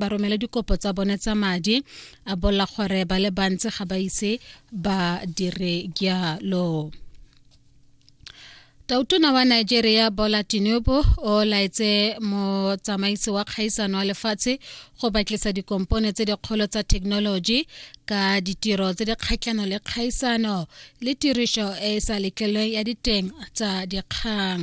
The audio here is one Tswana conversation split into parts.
ba romele dikopo tsa bone tsa madi a bolla gore ba le bantsi ga ba ise ba dire jalo tautona wa nigeria bola tinubu o laetse motsamaisi wa kgaisano wa lefatshe go batlisa dikompone tse dikgolo tsa thekenoloji ka ditiro tse di kgatlhano le kgaisano le tirišo e e sa letlelweng ya diteng tsa dikgang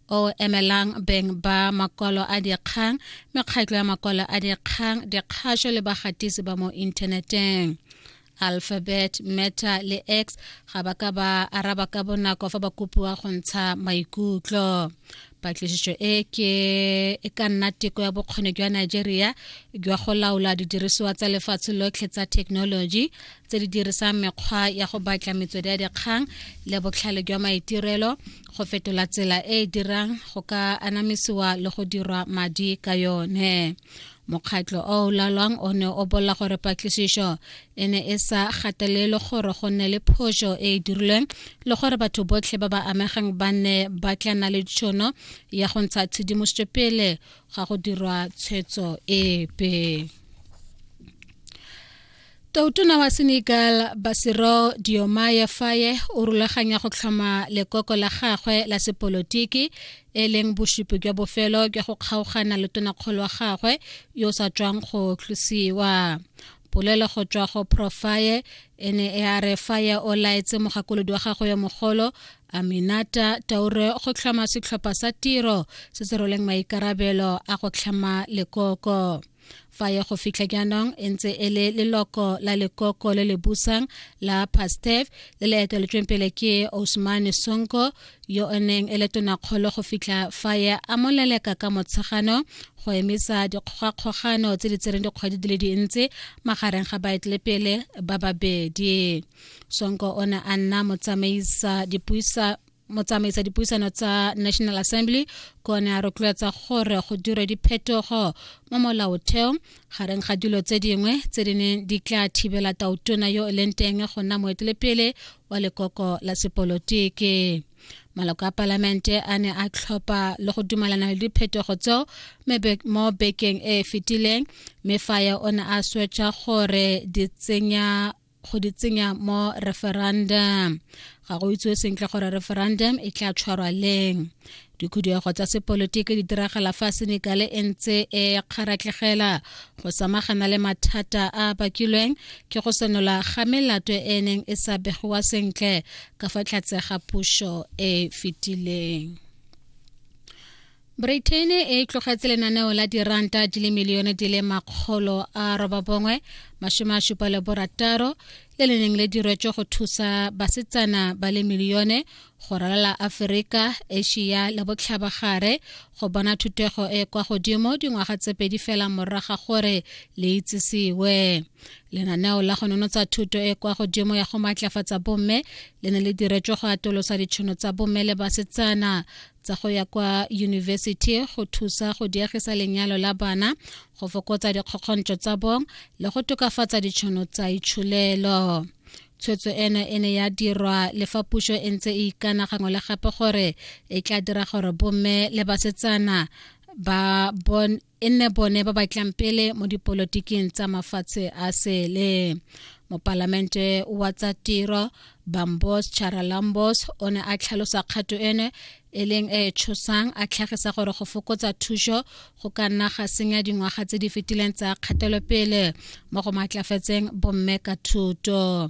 o emelang beng ba makwalo a dikgang mekgatlo ya makwalo a dikgang dikgašo le bagatisi ba mo inthaneteng alphabet meta le x ga ba ka ba araba ka bonako fa ba kopiwa go ntsha maikutlo patlisišo e ke e ka nna teko ya bokgoni jwa nigeria jwa go laola didirisiwa tsa lefatshe lotlhe tsa thekenoloji tse di dirisang mekgwa ya go batla metswedi ya dikgang le botlhale jwa maitirelo go fetola tsela e e dirang go ka anamisiwa le go dirwa madi ka yone mokgatlho o o lalwang o ne o bolela gore patlisišo e ne e sa gatelele gore go nne le phoso e e dirilweng le gore batho botlhe ba ba amegang ba ne ba tla na le tšhono ya go ntsha tshedimosetso pele ga go dirwa tshwetso epe Toutona wa Senegal Basiro Diomaye Faye o rulaganya go tlhoma lekoko la gagwe la sepolotiki e leng bosupi jwa bofelo jwa go kgaogana le tonakgolo wa gagwe yo o sa tswang go tlosiwa polelo go tswa go profaye e ne e a re faye o laetse mogakolodi wa gagwe yo mogolo aminata taure go tlhoma setlhopha sa tiro se se roleng maikarabelo a go tlhama lekoko fa ya go fitlha jaanong e ntse e le leloko la lekoko le le busang la pastef le le eteletsweng pele ke osmane sonko yo o neng e le tonakgolo go fitlha fa ya amoleleka ka motshegano go emisa dikgogakgogano tse di tsereng dikgwedi di le dintsi magareng ga baetelepele ba babedi sonko o ne a nna motsamaisa dipuisa motsamaisa dipuisano tsa national assembly ko ne a rotloetsa gore go dire diphetogo mo molaotheo gareng ga dilo tse dingwe tse di neng di tla thibela tautona yo e leng teng go nna moetelepele wa lekoko la sepolotiki maloko a palamente a ne a tlhopha le go dumalana le diphetogo tseo mo bekeng e e fetileng mme faye o ne a swetsa gore di tsenya go di tsenya mo referendum ga go itsewe sentle gore referendum e tla tshwarwa leng dikhuduego tsa sepolotiki di diragala fa senekale e ntse e kgaratlegela go samagana le mathata a bakilweng ke go senola ga melato e neng e sa begiwa sentle ka fa tlhatse ga puso e fetileng britain e tlogetse lenaneo la diranta di le milione di le makgolo a robabongwe masome a supa le borataro le le neng le diretswe go thusa basetsana ba le milione go ralala aforika asia le botlhabagare go bona thutego e kwa godimo dingwaga tse pedi fela moraga gore le itsisiwe lenaneo la go nonotsa thuto e kwa godimo ya go maatlafatsa bomme le ne le diretswe go atolosa ditšhono tsa bomme le basetsana tsa go ya kwa yunibesithi go thusa go diegisa lenyalo la bana go fokotsa dikgokgontšo tsa bong le go tokafatsa ditšhono tsa itsholelo tshwetso eno e ne ya dirwa le fa puso e ntse e ikana gangwe le gape gore e tla dira gore bomme le basetsana ba bon e nne bone ba batlang pele mo dipolotiking tsa mafatshe a sele mopalamente wa tsa tiro bambos charalambos o ne a tlhalosa kgato ene e leng e e tshosang a tlhagisa gore go fokotsa thuso go ka nna ga senya dingwaga tse di fetileng tsa kgatelopele mo go maatlafatseng bomme ka thuto